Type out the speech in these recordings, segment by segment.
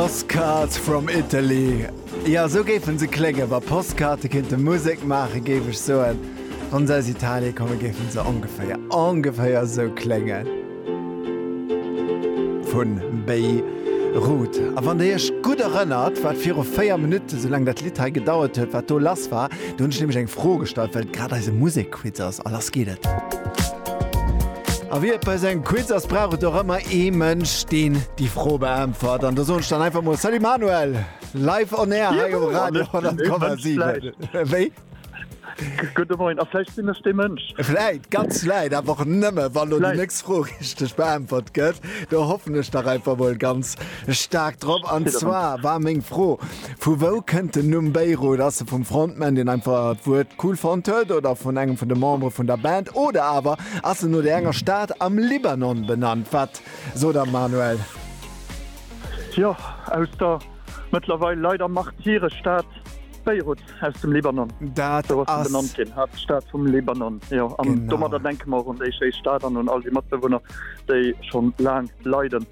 Postcards from Italy, jo esou géife se kléngen, wa Postkaarte kinnte Musek maachen, géif ech soen, wann se aus Italie kommen, géife se ongeféier, ongeféier esou kléngen. Vun Béirut. A wann der iech gutt erënnert, wat viru 4 Minutten, esou laang dat Lidd hei gedauert huet, wat do lass war, do hunn ech nämlech eng Fro gestallt, well et grad eise Musek. Quiz ass a lass geet et! A wéi et bei esou engem Quiz ass, brauch et och ëmmer ee Mënsch, deen déi Fro beäntwert. An do soen ech dann einfach mol Salut Manuel! Live on air hei um Radio 10,7. Wéi? Gudde Moien, a vläicht sinn ech dee Mënsch. Vläit, ganz vläit, awer och nëmme wann elo déi nächst Fro richteg beäntwert gëtt. Do hoffen ech dach einfach mol ganz staark drop. An zwar war meng Fro, Vu wou kënnt den Numm Beirut? Ass e vum Frontman, deen einfach d'Wuert cool fonnt huet oder vun engem vun de Membere vun der Band? Oder awer ass en no där enger Stad am Libanon benannt? Wat sot der Manuel? Jo, aus der mëttlerweil leider Martyrestad Beirut aus dem Libanon. Dat Sou ass se benannt ass. ginn, Haaptstad vum Libanon. Jo, an Genau. domadder denke mer och un déi schéi Stad an un all déi Matbewunner, déi schonn laang leiden.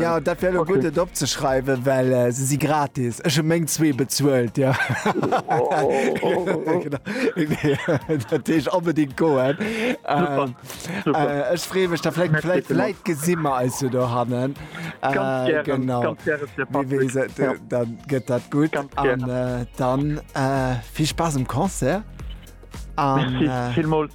Ja dat wär lo gutt et opzeschreiwen, well se si gratis. Ech hu meng zwee bezuelt ja. Dat deeg onbedingt goen. Ech free mech derläit gesinnmmer eis jo do hannen. Genau dann gëtt dat gutt an dann vill Spaass um Concert. Vill Molz.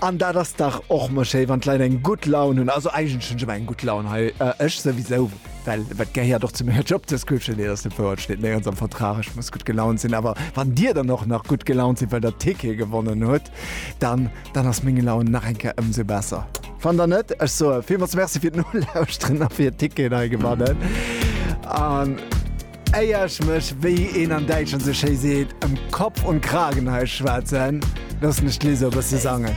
An dat ass dach och mol schéi wann d'Leit eng gutt Laun hunn. Also eigentlech hunn ech ëmmer eng gutt Laun hei. Ech souwisou, well wat gehéiert och zu menger Job Description, nee dat ass net wouer, et steet néierens am Vertrag ech muss gutt gelaunt sinn. Awer wann Dir dann och nach gutt gelaunt sidd well Der d'Tickete gewonnen hutt, dann dann ass meng Laun nach eng Kéier ëmsou besser. Wann dann net, ech soe villmools Merci fir d'Nolauschteren a fir Ticketen hei gewannen an. Éier ech mech, wéi een an Däitschland sou schéi seet, ëm Kopf und Kragen hei schwätzen, loossen ech d'Liz e bësse sangen.